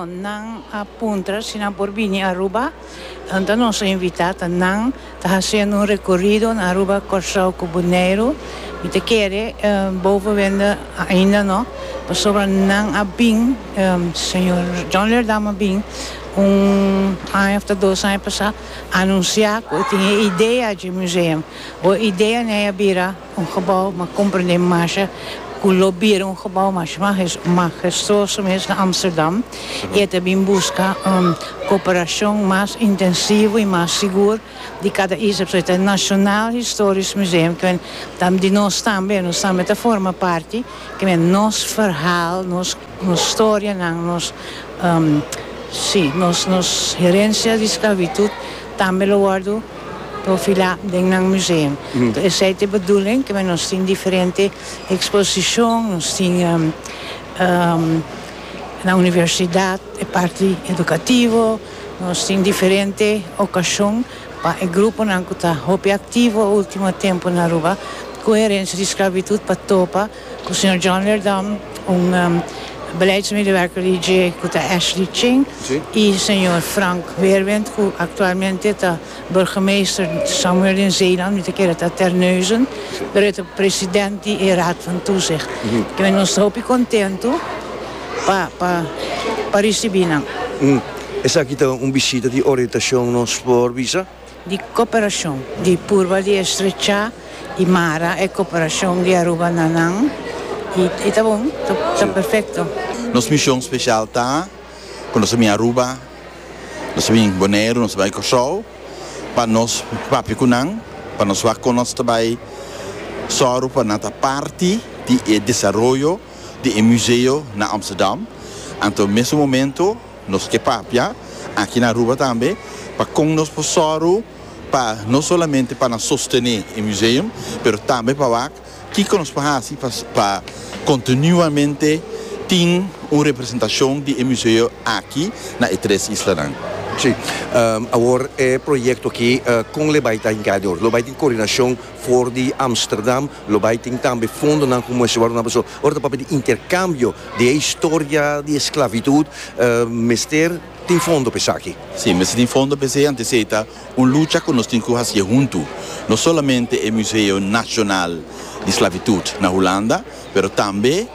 Nan a puntra si nan por bini Aruba. Enton nos a invita ta nan ta haciendo un recorrido na Aruba, Corsou cu Boneiru. Mi ta kere boven wende ainda no, pasobra nan a bin, señor John Leerdam a bin un aña of ta dos aña pasa anuncia cu e tin e idea dje museum. Bo idea n'ey a bira. Un gebou m'a komprendé masha ku lo bira un gebou masha magestuoso mes na Amsterdam i e ta bin buska un koperashon mas intensivo i mas sigur di kada isla. So e ta National Historisch Museum ku men ta di nos tambe, nos tambe ta forma parti, ku men nos verhaal, nos. Nos storianan, nos, si, nos, nos herencia di sclavitud tambe lo wordo profila den nan museum. Toh esey ta e bedoeling kimen nos tin diferente exposicion, nos tin na universidad e parti educativo, nos tin diferente ocasion pa e gruponan cu ta hopi activo ultimo tempo na Aruba cu herencia di sclavitud pa topa Cu señor John Leerdam, un beleidsmedewerker di dje cu ta Ashley Ching y señor Frank Weerwind cu actualmente ta burgemeester Samuel den Zeeland, mi ta kere ta Terneuzen, pero e ta president di e raad van toezicht. Kimen nos ta hopi contento pa pa ricibi nan. Esaki ta un bishita di orientacion nos por bisa. di cooperacion. Di purba di estrechá y mara e cooperacion di Aruba na nan y ta bon, ta perfecto. Nos mision special ta cu nos a bin Aruba, nos a bin Boneiru, nos a bai Corsou pa nos papia cu nan, pa nos wak con nos ta bai zorgo pa nan ta parti di e desaroyo di e museo na Amsterdam. Anto mes un momento. Nos ke papia aki na Aruba tambe pa kon nos por sòru pa no solamente pa nan sostené e museum pero tambe pa wak kiko nos por hasi pa kontinuamente tin un representashon di e museo aki na e tres islanan. Sí, awor e proyekto aki kon lo bai ta hinká dor? Lo bai tin koordinashon? For di Amsterdam lo bai tin tambe fondonan ku muestra wòrdu nan paso. Ora ta papia di interkambio di e historia di esklavitud mester tin fondo pa esaki. Si, mester tin fondo pa esei, antes esei ta un lucha ku nos tin ku hasié huntu. No solamente e Museo Nasional di Sklavitud na Hulanda, pero tambe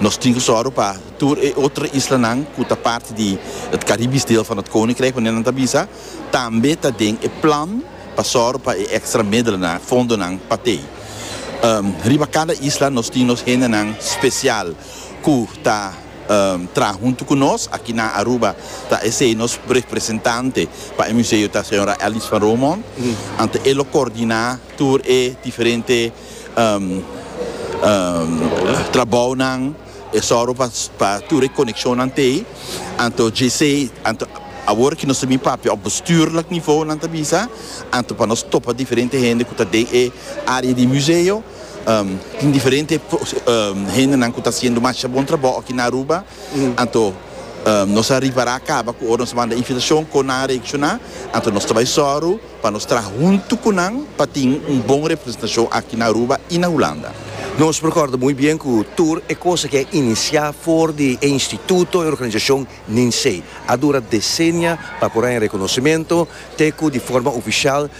nos tin ku sòru pa tur e otro islanan ku ta parti di e Karibis deel van het Koninkrijk, wanneer nan ta bisa tambe ta den e plan. pa sòru pa e èkstra medelenan, fondonan pa tei. Riba kada isla nos tin nos hendenan spesial ku ta traha huntu ku nos. Aki na Aruba ta esei nos representante pa e museo ta señora Alice van Romont. Anto e lo kordiná tur e diferente trabounan. E sòru pa pa tur e konekshonnan te ei. Anto JC, anto awor ke nos ta bin papia òf bestuurlijk nivou nan ta bisa, anto pa nos topa diferente hende ku ta den e área di museo. Tin diferente hendenan ku ta hasiendo masha bon trabou aki na Aruba. Anto nos a ripará kaba ku ora nos a manda invitashon kon nan a reakshoná. Anto nos ta bai sòru. Pa nos traha huntu cu nan pa tin un bon representacion aki na Aruba y na Hulanda. Nos recorda muy bien cu tur e cosa que a inicia for di e instituto y organizacion Ninsee a dura decennia pa por haña reconocimento te cu di forma oficial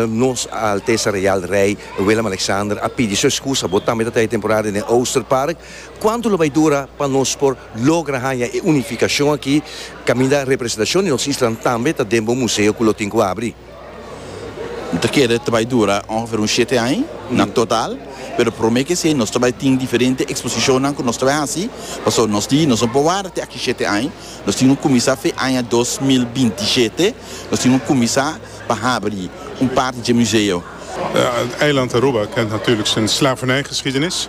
Nos A Altesa Real Rey Willem-Alexander a pidi su excusa. Bo tambe ta trae e temporada den Oosterpark. Cuantu lo bay dura pa nos por logra haya e unificacion aki caminda representacion di nos islanan tambe ta den bo museo cu lo tin cu abri? Mi ta kere ta bay dura ongeveer un shete aña na total, pero prome ke esey nos ta bay tin diferente exposicionnan cu nos ta bay haci, pasobra nos di nos no por warda te aki shete aña, nos tin cu cuminsa fe aña dos mil binti shete, nos tin cu cuminsa pa habri un parti dje museo. Eiland Aruba kent natuurlijk zijn slavernijgeschiedenis.